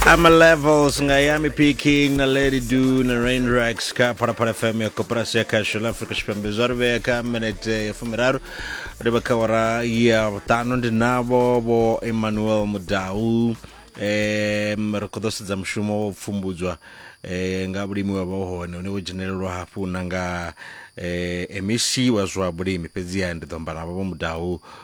ama levels nga yami picking na lady do na rain racks ka parapara fm ya koperasi ya kashel africa tshipembe zwa ri vhea kha minete ya fumiraru ri vha kha wara ya vhuṱanu ndi navho vho emmanuel mudau um ri khou ḓo sedza mushumo wa u pfumbudzwa eh, nga vhulimi wa vha u hone une wo dzhenelelwa hafhu na nga eh, mec wa zwa vhulimi fhedziha ndi ḓo amba navho vho mudau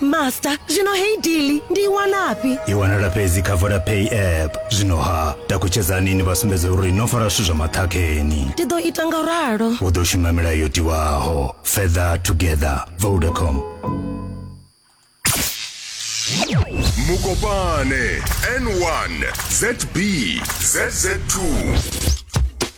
master zwino heyi dili ndi i wanafhi i wanala fhedzi kha vodapay app zwino ha takutshedzani ni vha sumbedze uri no fara zwithu zwa maṱhakheni ndi ḓo ita nga ralo u ḓo shuma milayo yo tiwaho further together vodacom mukopane n1 zb zz2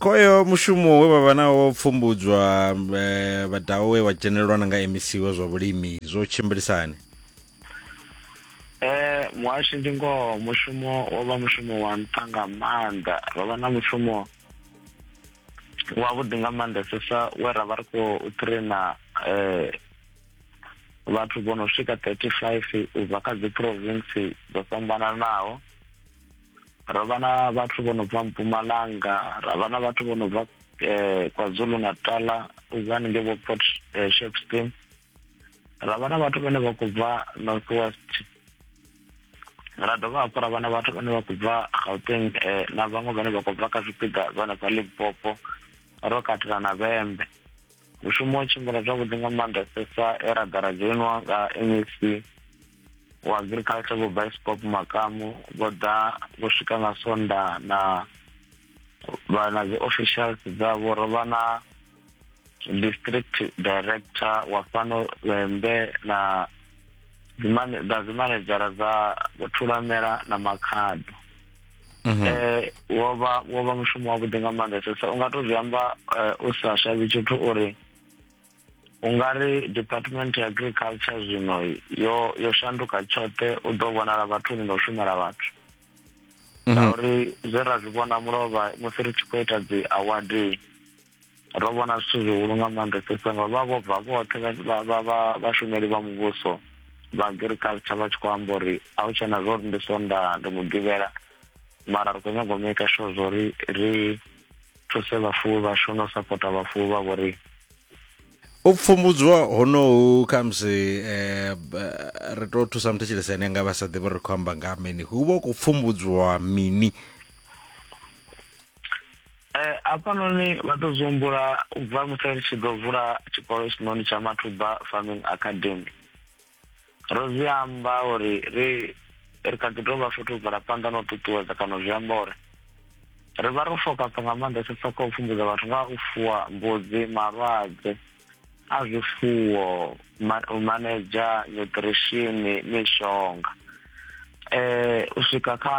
Khoyo mushumo we vha vha nawo wa u pfumbudzwa eh, vhadao we wa dzhenelelwa na nga MEC wa zwa vhulimi zwo tshimbilisani Eh muhashi ndi ngoho mushumo wo vha mushumo wa nṱha nga maanḓa ro vha na mushumo wavhuḓi nga maanḓesesa we ra vha ri khou traina eh vhathu vho no swika 35 u bva kha dzi province dzo fhambananaho ro vha na vhathu vho no bva mpumalanga ra vha na vhathu vho no bva eh, kwazulu natala ubva haningei vho port eh, shepston ra vha na vhathu vhane vha khou bva north west ra dovha hafhu ra vha na vhathu vhane vha khou bva gauteng eh, na vhaṅwe vhane vha khou bva kha zwipiḓa zwa hanefha limpopo ro katela na vhembe mushumo wa tshimbila zwavhuḓi nga maanḓesesa e ra ḓa ra dzhoinwa nga mec wa agriculture vho biskop makamu vho ḓa vho swika nga sonda na vha na dzi officials dzavho ro vha na district director wa fhano lwembe na dzimanedzhara dza vho thulamela na makhado mhm. eh wo vha wo vha mushumo wa vhuḓi nga maanḓesa so unga to zwi amba eh, u sa shavhi tshithu uri ungari department ya agriculture zwino yo yo shanduka tshoṱhe u ḓo vhonala vhathu ni no shumela vhathu mhm. ngauri zwe ra zwi vhona mulovha musi ri tshi khou ita dzi award ro vhona zwithu zwihulu nga maanḓesesa nga vha vho bva vhoṱhe vhashumeli vha muvhuso vha agriculture vha tshi khou amba uri a hu tshena zwo ri ndi sonda ndi mugivhela mara ri khou nyanga u maker sure zwo ri ri thuse vhafuwi vhashu na u sapota vhafuwi vha vho riṋe u pfumbudzwa honohu khamusi eh, ri to thusa muthu tshelesa ene nga vha sa ḓivhi ri khou amba nga mini hu vha u khou pfumbudzwa mini Eh, hafhanoni vha ḓo zwi humbula u bva musi ri tshi ḓo vula tshikolo tshinoni tsha mathuba farming academy ro zwi amba uri ri ri kha ḓi tou vha futhi u bvela phanḓa na u ṱuṱuwedza kana zwi amba uri ri vha ro fokasa nga maanḓesesa kha u pfumbudza vhathu nga u fuwa mbudzi malwadze a zwifuwo u manedzha nutrition mishonga um u swika kha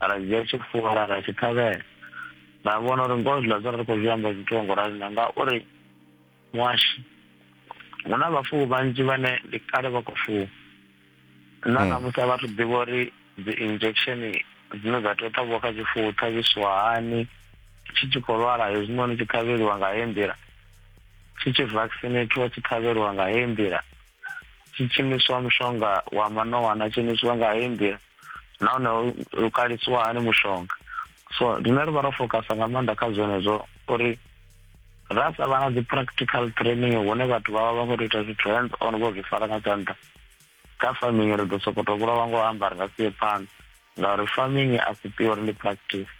ra dzhia tshifuwo ra ra tshi ṱhavhela ra vhona uri ngoho zwiḽa zwo ri khou zwi amba zwithu ngo rali na ngauri muhashi hu na vhafuwi vhanzhi vhane ndi kale vha khou fuwa na hmm. namusi a vhathu ḓivha uri dzi injection dzine dza tea u ṱhavhiwa kha tshifuwo ṱhavhisiwa hani tshi tshi khou lwala hezwinoni tshi ṱhavheliwa nga heyi nḓila tshi tshi vaccinatiwa tshi ṱhavheliwa nga heyi nḓila tshi tshimiswa mushonga wa manowana tshimiswa nga heyi nḓila nahone ho lukalisiwa hani mushonga so rine ri vha ro focasa nga maanḓa kha zwenezwo uri ra sa vha na dzi practical training hune vhathu vha vha vha khou tou ita zwithu hands on vho zwi fara nga tshanḓa kha farming ri ḓo sokoto vhulawa ngo amba ri nga sie phanḓa ngauri farming a si pure ndi practice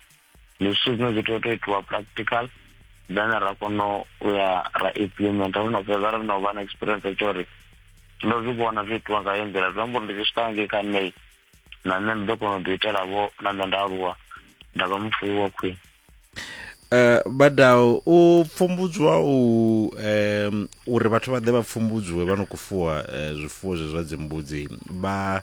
ndi zwithu zwine zwi tea u to itiwa practical then ra kona u ya ra implementa ro no fhedza ro no vha na experience tsho uri ndo zwi vhona zwi itiwa nga yo nḓila zwi amba uri ndi zwi swika ngei kha nṋe na nṋe ndi ḓo kona u ḓi itela vho na nṋe nda aluwa nda vha mufuwi wa khwine Eh badao u pfumbudzwa u em uri vhathu vha ḓe vha pfumbudzwe vha no kufuwa eh, zwifuwo zwe zwa dzimbudzi vha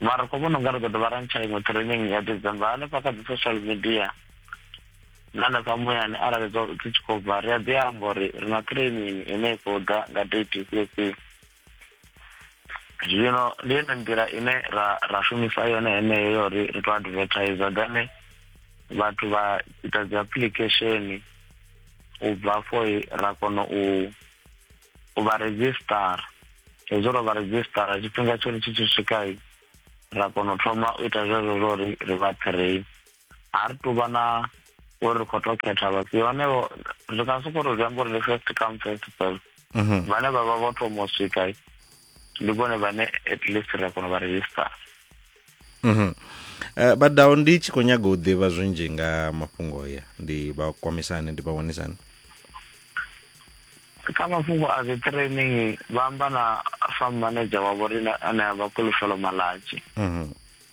Mara ri khou vhona unga ri ḓo dovha ra ntsha iṅwe training ya December hanefha kha dzi social media na hanefha muyani arali dzo dzi tshi khou bva ri a ḓi amba uri ri na training ine i khou ḓa nga date ifhio ifhio zwino ndi yone nḓila ine ra ra shumisa yone heneyo yo ri ri to advertiser then vhathu vha ita dzi application u bva afho ra kona u u vha redzhisṱara hezwo ro vha redzhisṱara tshifhinga tsho ri tshi tshi swika ra kona u thoma u ita zwezwo zwo ri ri vha train a ri tu vha na uri ri khou to khetha vhafhio hanevho ri nga soko ri zwi amba uri ndi first come first serve mhm. vhane vha vha vho thoma u swika ndi vhone vhane at least ri a kona u vha register mhm eh, badao ndi tshi khou nyaga u ḓivha zwinzhi nga mafhungo ya ndi vha kwamisani ndi vha wanisani kha mafhungo a dzi training vha amba na farm manager wavho rine ane a vha kulufelo malatshi mhm.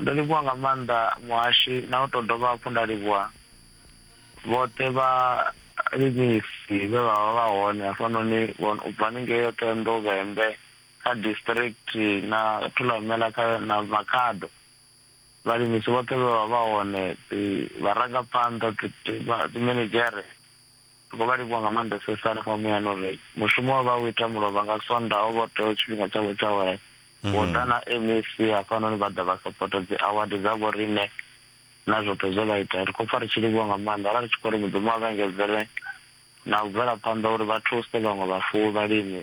Ndo livhuwa nga maanḓa muhashi na u tou dovha hafhu nda livhuwa vhoṱhe vhalimisi vhe vha vha vha hone hafhanoni vhon u bva haningei Othendo, Vhembe kha District na Thulamela kha na Makhado. Vhalimisi vhoṱhe vhe vha vha hone, dzi vharangaphanḓa, dzi dzi minidzhere Ri khou vha livhuwa nga maanḓesesa hanefha muyani uri mushumo we vha u ita mulovha nga Sonda ho vha u teaho tshifhinga tshavho tsha awara vho ḓa na MEC hafhanoni vha ḓa vha sapota dzi award dza vhoriṋe na zwoṱhe zwe vha ita. Ri khou pfa ri tshi livhuwa nga maanḓa ra ri tshi khou ri Mudzimu a vha engedzele na u bvela phanḓa uri vha thuse vhaṅwe vhafuwi vhalimi.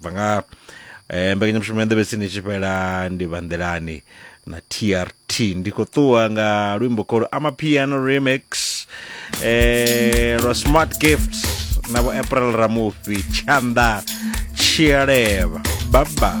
bva nga eh, mbekanyamushumo ya nḓevhesini tshi fhela ndi vha nḓelani na trt ndi khou ṱuwa nga luimbo kholo amapiano remix eh, lwa smart gift na vho april ramufhi tshanḓa tshialeva baba